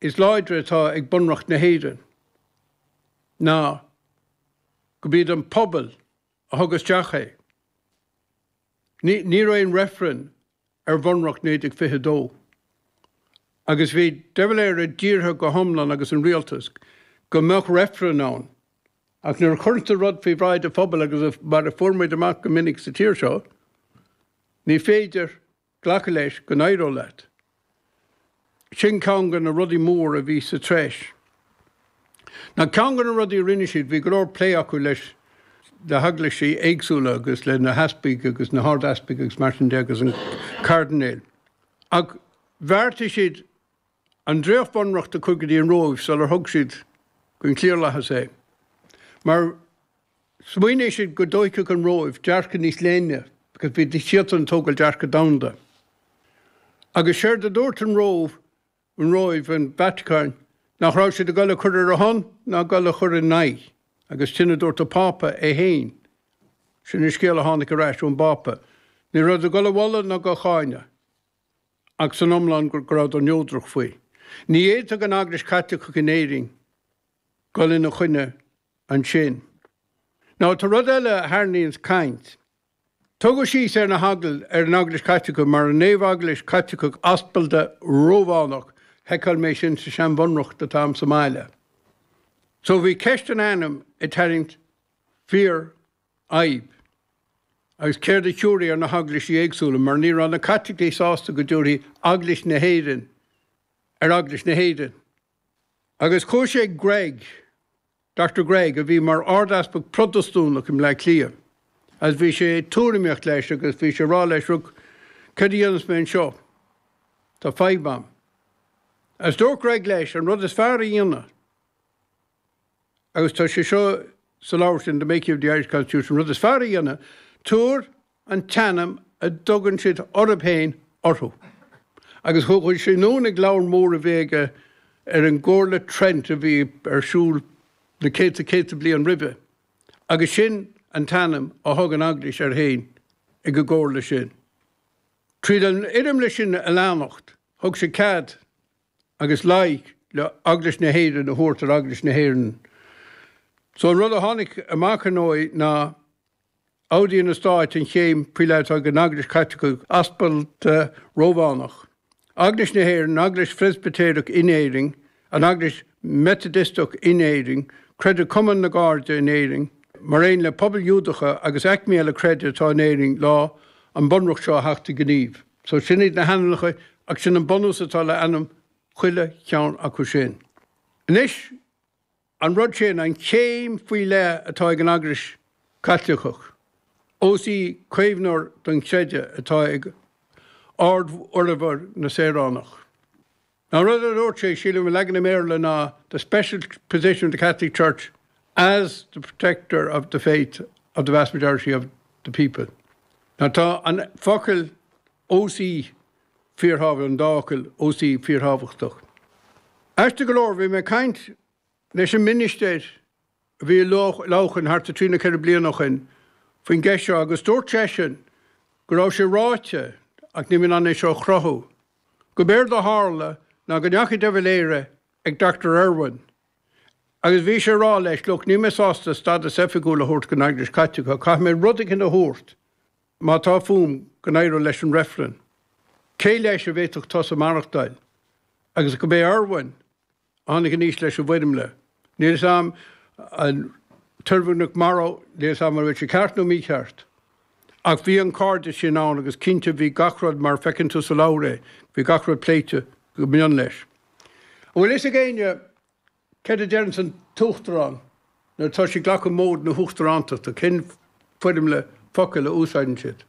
is láidre atá ag Bunreacht na hÉireann ná gurb iad an pobal a thug isteach é. Ní raibh aon reifreann ar Bhunreacht 1922 agus bhí De Valera dírithe go hiomlán agus an Rialtas go mbeadh reifreann ann, ach nuair a chuireann tú rud faoi bhráid an phobail agus mar a fuair muid amach go minic sa tír seo, ní féidir Glacadh leis go n-éireodh leat. Sin ceann de na rudaí mór a bhí sa treis. Nó ceann de na rudaí a rinne siad, bhí go leor plé acu leis na heaglaisí éagsúla agus le na heaspaig agus na hardeaspaig agus mar sin de agus an cairdinéil. Ach bheartaigh siad an dréacht-bhunreacht a chur go dtí an Róimh sular thug siad don chliarlathas é. Mar. Smaoinigh siad go dtóigfeadh an Róimh dearcadh níos leithne agus bhí siad in ann a thógáil dearcadh domhanda. Agus séard a dúirt an Róimh, an Róimh, an Vatacáin, nach raibh siad ag dul ag cur ar a shon ná ag dul ag cur ina aghaidh. Agus sin a dúirt an Pápa é féin. Sin an scéal a tháinig ar ais ón bPápa. Ní raibh ag dul á mholadh ná dhá cháineadh. Ach san iomlán go rabhadar neodrach faoi. Ní fhéadfadh an Eaglais Chaitliceach in Éirinn. dhul ina choinne ansin. Now tá rud eile a tharraingíonn caint. Tógadh síos ar na heagl, ar an Eaglais Chaitliceach, mar an naomh-eaglais Chaitliceach aspalda Rómhánach, sheiceáil mé sin sa seanbhunreacht atá a'm sa mbaile. So bhí ceist an ainm ag tarraingt fíor fhadhb. Agus céard a thiúrfaí ar na heaglaisí éagsúla, mar ní raibh na Caitlicigh sásta go dtiúrfaí Eaglais na hÉireann ar Eaglais na hÉireann. Agus chuaigh sé ag Gregg, Dochtúir Gregg, a bhí mar Ard-Easpag Protastúnach i mBleá Cliath, agus bhí sé ag tuairimíocht leis agus bhí sé ag rá leis, Look, céard a dhéanfas mé anseo? Tá fadhb a'm. Agus dúirt Gregg leis, an rud is fearr a dhéanamh, agus tá sé seo sa leabhar sin, The Making of the Irish Constitution, an rud is fearr a dhéanamh, tabhair an t-ainm a dtugann siad orthu féin orthu, agus thug sé anonn ag leabhar mór a bhí aige ar an gComhairle Trent a bhí ar siúl na céadta céadta bliain roimhe, agus sin an t-ainm a thug an Eaglais air féin ag an gComhairle sin. Tríd an fhoirmle sin a leanacht, thug sé cead agus leithead le Eaglais na hÉireann a thabhairt ar Eaglais na hÉireann. So an rud a tháinig amach, ar ndóigh, ná. Admhaíonn an Stát an chéim faoi leith atá ag an Eaglais Chaitliceach Aspalda Rómhánach, Eaglais na hÉireann, an Eaglais Phreispitéireach in Éirinn, an Eaglais Mheitidisteach in Éirinn, Creideamh-Chumann na gCairde in Éirinn, mar aon le pobail Ghiúdacha agus aicmí eile creidimh atá in Éirinn lá an Bunreacht seo a theacht i ngníomh. So sin iad na hainmneacha agus sin an bunús atá le ainm chuile cheann acu sin. Anois. An rud sin an chéim faoi leith atá ag an Eaglais Chaitliceach, ós í caomhnóir don chreideamh atá ag ardfhormhor na saoránach. An rud a dúirt sé, sa leagan i mBéarla ná the special position of the Catholic Church as the protector of the faith of the vast majority of the people. Tá an focal ós í fíorthábha an dá fhocal ós í fíorthábhachtach. Aisteach go leor, bhí mé ag caint leis an ministéir a bhí i Leamhcán thart ar trí nó ceithre bliana ó shin faoin gceist seo agus dúirt seisean go raibh sé ráite ach níl mé in ann é seo a chruthú gurb éard a tharla ná go ndeachaigh De Valera ag Dochtúir Irwin agus bhí sé ag rá leis, look, níl mé sásta stadas oifigiúil a thabhairt don Eaglais Chaitliceach, caithfidh mé rud éigin a thabhairt Má tá fúm go n-éireoidh leis an reifreann, céard leis a bhféadfadh tusa maireachtáil? Agus gurb é Irwin a tháinig aníos leis an bhfoirmle, níl 'fhios a'm, an tOirmhinneach Morrow, níl 'fhios a'm an bhfuil sé ceart nó mícheart. Ach bhí an cairdeas sin ann agus cinnte bhí gach rud mar feiceann tú sa leabhar é, bhí gach rud pléite go mion leis. An bhfuil 'fhios ag éinne, Céard a deireanns an tUachtarán nuair atá sé ag glacadh móid na huachtarántachta, cén foirmle focal a úsáideann siad?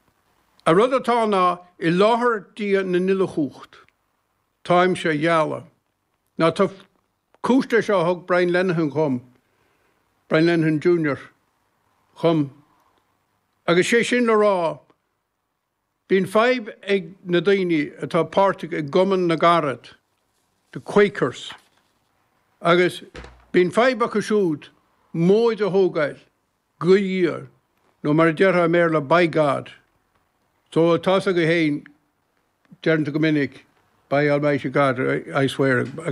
An rud atá ná i láthair Dia na n-uilechumhacht. Táimse á ghealladh. Now tá cúis le seo a thug Brian Lenihan dhom, Brian Lenihan Junior dhom, agus sé sin le rá Bíonn fadhb ag na daoine atá páirteach i gCumann na gCarad, The Quakers, agus bíonn fadhb acu siúd móid a thógáil, go háirithe, nó mar a déarfá i mBéarla, By God. So, tá 'fhios agaibh féin, deireann tú go minic, By Almighty God, I swear, agus.